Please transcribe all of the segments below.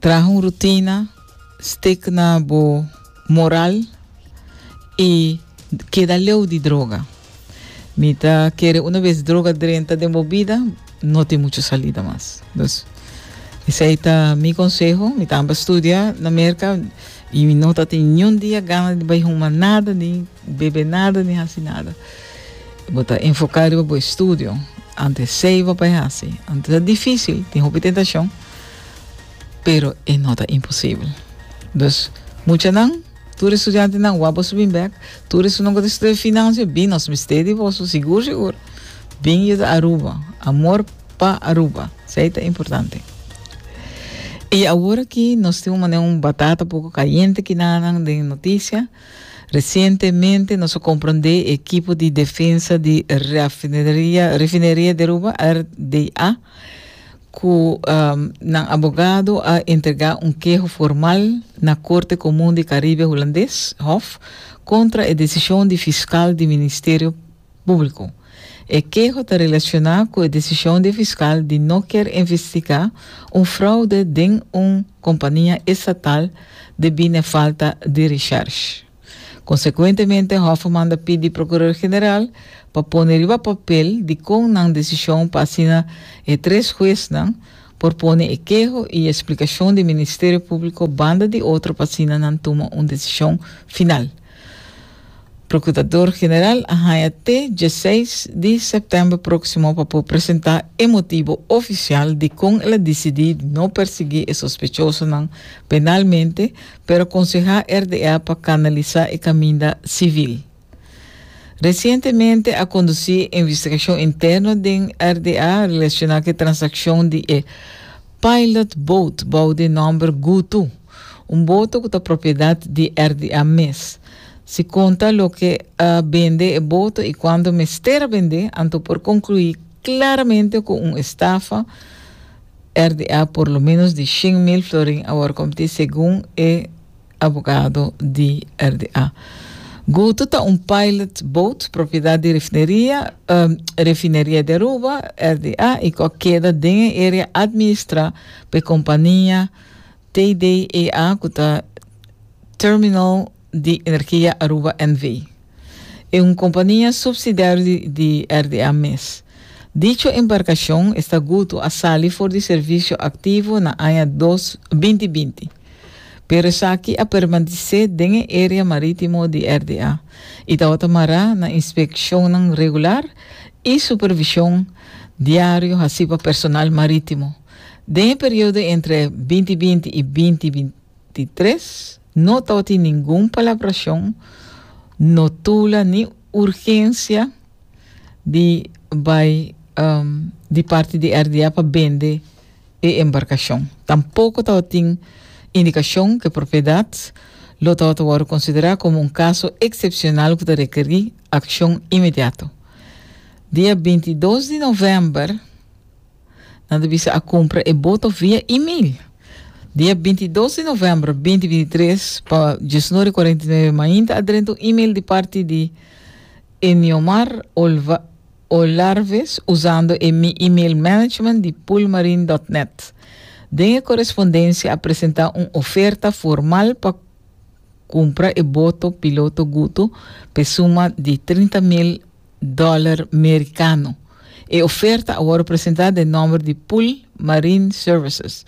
Traha un rutina stik na bo moral i keda leu di droga. Mi ta kere una bes droga drenta den bo bida, no tin muchu salida mas. Dus, esei ta mi konseho. Mi ta amper studia na Merka i mi no ta tin niun dia gana di bai huma nada, ni bebe nada, ni hasi nada. Bo ta enfoká riba bo estudio. Ante esei papaya hasi. Ante ta difísil, tin hopi tentashon. pero e no ta imposibel. Dus, muchanan, tur e studiantenan, wak boso bin bèk. Tur esunnan ku ta studia finansia, bin nos mester di boso, sigur sigur. Bin yuda Aruba. Amor pa Aruba. Esei ta importante. I awor aki nos tin un manera un batata poko kayente aki na nan den e notisia. Resientemente nos a komprondé e ekipo di defensa di Rafineria Refineria di Aruba, RDA, cu nan abogado a entrega un keho formal na Corte Comun di Caribe Hulandes, Hof, contra e decision di fiscal di Ministerio Publico. E keho ta relaciona cu e decision di e fiscal di no kier investiga un fraude den un compania estatal debí n'e falta di recherche. Konsekuentemente, Hofferman ta pidi Prokuror General pa pone riba papel dikon nan desishon pa asina e tres huesnan por pone e keho i e splikashon di Ministerio Públiko banda di otro pa asina nan tuma un desishon final. Prokurador General a haña te dieseis di sèptèmber próksimo pa por presentá e motibo ofisial dikon el a disidí no persiguí e sospechosonan penalmente pero konsehá RDA pa kanalisá e kaminda sivil. Resientemente a kondusí e investigashon interno den RDA relashoná ku e transakshon di e Pilot Boat bou di e nòmber Gutu, un boto ku ta propiedat di RDA mes. Si konta loke a bende e boto i kuantu mester a bende, anto por konkluí klaramente ku un estafa, RDA por lo menos di shin mil florin a wòrdu komtí segun e abogado di RDA. Guto ta un pilot boat propiedat di Refineria Refineria di Aruba, RDA, i ku a keda den e area administrá pa e kompania TDEA ku ta Terminal di Energia Aruba NV. e un kompania supsidiario di RDA mes. Dicho embarkashon esta gutu a sali for di servisio aktivo na aña dos binti binti, pero esaki a permanesé den e area marítimo di RDA i tabata mará na inspekshonnan regular i supervishon diario hasí pa personal marítimo den e periodo entre binti binti i binti binti tres. No ta otin ningun palabracion no tula ni urgencia di bay di parti di RDA pa bende e embarcacion. Tampoco ta otin indicacion cu e propiedad lo ta ota worde considera como un caso excepcional cu ta requeri accion inmediato. Dia bintidos di november, Nan ta bisa a kumpra e boto via email. Dia bintidos di novèmber binti binti tres pa diesnori kuarenta i nueve mainta a drenta un email di parti di Eniomar Olva Olarves usando e mi email management di pulmarin dot net. Den e korespondensia a presenta un oferta formal pa kumpra e boto piloto Guto p'e suma di trinta mil dòler merikano. E oferta a wòrdu presentá den nòmber di Pool Marine Services,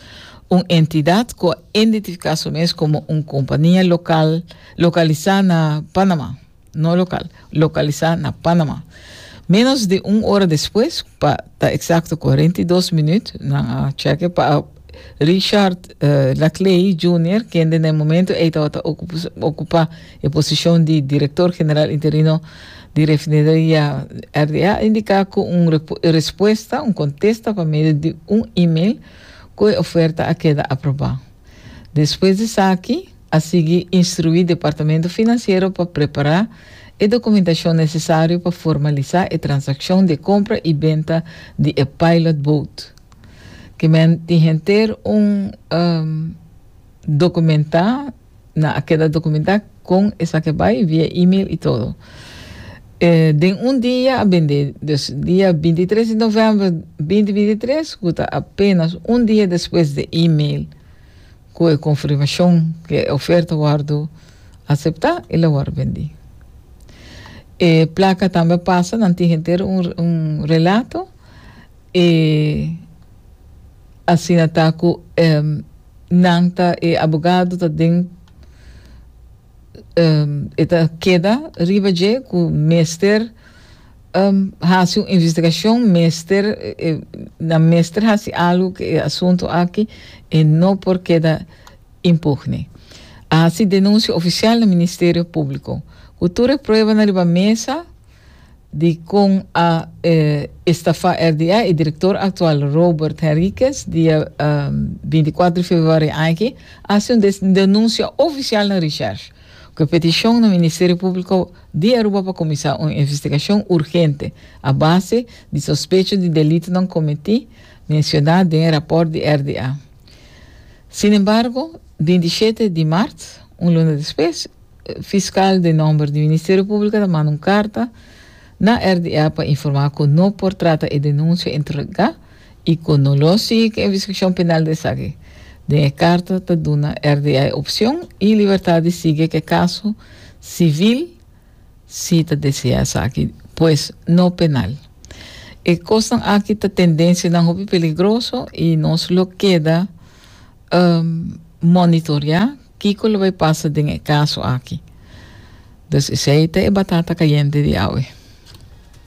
un entidat ku a indentifiká su mes komo un kompania lokal lokalisá na Panamá, no lokal, lokalisá na Panamá. Ménos di un ora despues, pa ta eksakto kuarenta i dos minüt, nan a tjèk'e pa a Richard Laclay Junior, kende na e momento ei tabata ocupa e posicion di director general interino di refineria RDA, indica cu un respuesta, un contesta pa medio di un email cu e oferta a keda aproba. Despues di esaki, a sigui instrui departamento financiero pa prepara e documentacion necesario pa formalisa e transaccion di e compra y benta di e pilot boat. Ki men tin henter un um, documentá, na a keda documentá con esaki bai via e-mail y todo. Eh, den un dia a bende, dus dia 23 di november 2023, cu ta apenas un dia despues de e-mail cu e confirmacion que e oferta wordo aceptá y la wordo bendi. E placa tambe pasa nan tin henter un, un relato, E asina ta ku e nan ta e abogado ta den e ta keda riba dje ku mester hasi un investigashon mester nan mester hasi algu ku e asuntu aki e no por keda impugne a hasi denunsia ofisial na ministerio públiko ku tur e pruebanan riba mesa. di kon a estafá RDA, e direktor aktual Robert Henriquez dia binticuatro di februari aña aki a hasi un denunsia ofisial na Recherche ku e petishon na Ministerio Públiko di Aruba pa kuminsá un investigashon urgente a base di sospecho di delitonan komití mensioná den e rapòrt di RDA. Sinembargo, binti shete di mart, un luna despues, Fiskal den nòmber di Ministerio Públiko ta manda un karta na RDA pa informá ku no por trata e denunsia entregá i ku no lo sigui ku e investigashon penal di esaki. Den e karta ta duna RDA e opshon i libertat di sigui ku e kaso sivil si ta deseá esaki, pues no penal. E kosnan aki ta tendensianan hopi peligroso i nos lo keda monitoreá. Kiko lo bay pasa den e caso aki? Dus esey ta e batata cayente di awe.